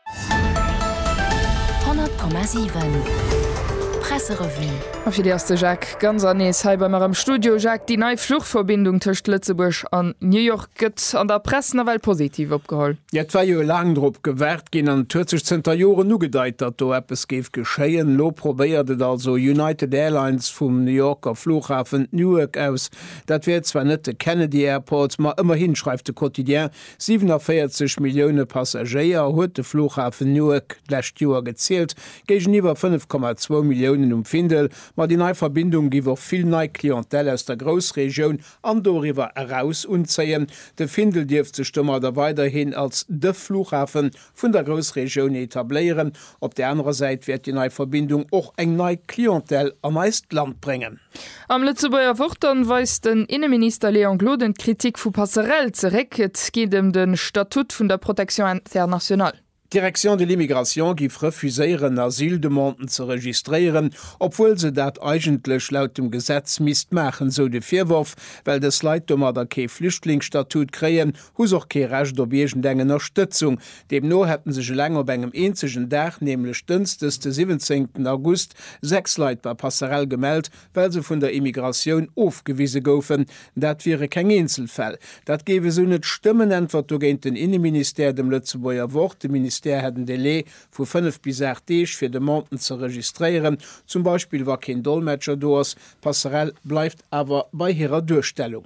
100,7 Presserevue. A fir déi ass de Jacques Ganser nees hei bei mer am Studio. Jacques, déi nei Fluchverbindung tëscht Lëtzebuerg an New York gëtt an der Press nawell positiv opgeholl. Jo, et war jo laang drop gewaart ginn an et huet sech zënter Joren ugedeit, datt do eppes géif geschéien. Elo probéiert et also United Airlines vum New Yorker Flughafen Newark aus. Dat wär zwar net de Kennedy Airport, ma ëmmerhin, schreift de Quotidien, 47 Millioune Passagéier huet de Flughafen Newark d'lescht Joer gezielt, géigeniwwer 5,2 Milliounen um Findel. Ma déi nei Verbindung géif och vill nei Clientèle aus der Groussregioun an doriwwer eraus unzéien. De Findel dierft sech domadder weiderhin als de Flughafen vun der Groussregioun etabléieren. Op där anerer Säit wäert déi nei Verbindung och eng nei Clientèle an eist Land bréngen. Am Lëtzebuerger Wort dann weist den Inneminister Léon Gloden d'Kritik vu Passerelle zeréck. Et geet ëm de Statut vun der Protection internationale. D'Direction de l'immigration giff refuséieren, Asyldemanden ze registréieren, obwuel se dat eigentlech laut dem Gesetz misst maachen, sou de Virworf, well dës Leit domadder kee Flüchtlingsstatut kréien, hu se och kee Recht op iergend eng Ënnerstëtzung. Deemno hätte sech eleng op engem eenzegen Dag, nämlech dënsdes de 17 August, sechs Leit bei Passerell gemellt, well se vun der Immigratioun ofgewise goufen. Dat wiere keng Eenzelfäll. Dat géif esou net stëmmen, äntwert dogéint den Inneministère dem Lëtzebuerger Wort. De Ministère hätt en Delai vu fënnef bis aacht Deeg, fir Demanden ze registréieren, zum Beispill wa keen Dolmetscher do ass. Passerell bleift awer bei hirer Duerstellung.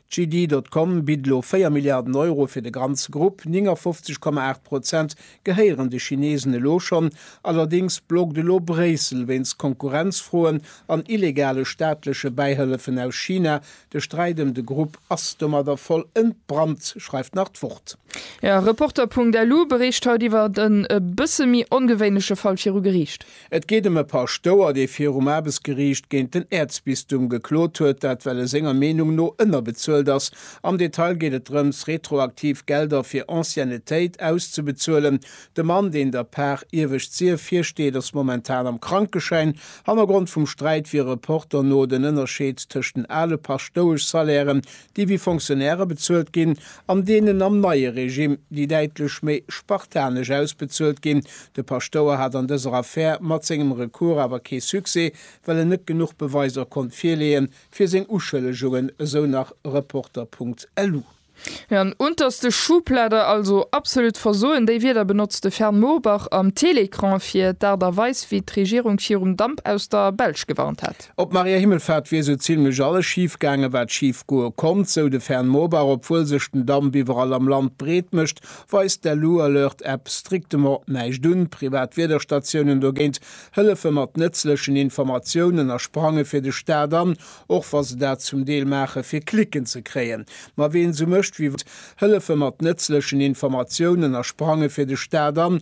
JD. Com bitt elo 4 Milliarden Euro fir de ganze Grupp. 59,8 Prozent gehéieren de Chinesen elo schonn. Allerdéngs blockt elo Bréissel wéinst Konkurrenzfroen an illegale staatleche Bäihëllefen aus China. De Sträit ëm de Grupp ass domadder voll entbrannt, schreift nach d'Wort. Reporter.lu bericht haut iwwer en e bësse méi ongewéinleche Fall viru Geriicht. Et geet ëm e Paschtouer, dee virum Aarbechtsgeriicht géint den Äerzbistum geklot huet, dat well e senger Meenung no ënnerbezuelt ass. Am Detail geet et drëms, retroaktiv Gelder fir Anciennetéit auszebezuelen. De Mann, deen der Par Iewescht Sief virsteet, ass momentan am Krankeschäin. Hannergrond vum Sträit wier e Reporter no den Ënnerscheed tëscht den ale Paschtoueschsalairen, déi wéi Fonctionnairë bezuelt ginn, an deenen am neie Regime, déi däitlech méi spartanesch ausbezuelt ginn. De Paschtouer hat an dëser Affär mat sengem Recours awer kee Succès, well en net genuch Beweiser konnt virleeën, fir seng Uschëllegungen, esou nach Reporter Punkt lu. An der unterste Schublade also. Absolut Versoen, déi Wierder benotzt de Fern Mourbach am Télécran fir d'Aart a Weis, wéi d'Regierung virum Damp aus der Belsch gewarnt hat. Op Maria Himmelfahrt wier sou zimlech alles schif gaangen, wat schif goe konnt, sou de Fern Mobach. Obwuel sech den Damp iwwerall am Land breet mécht, weist d'LU-Alert-App strictement näischt un. Privat Wiederstatiounen dogéint hëllefe mat nëtzlechen Informatiounen a sprange fir de Staat an, och wa se dat zum Deel maache fir Klicken ze kréien. Ma ween sou mécht wéi. Hëllefe mat nëtzlechen Informatiounen a sprange fir de Staat an,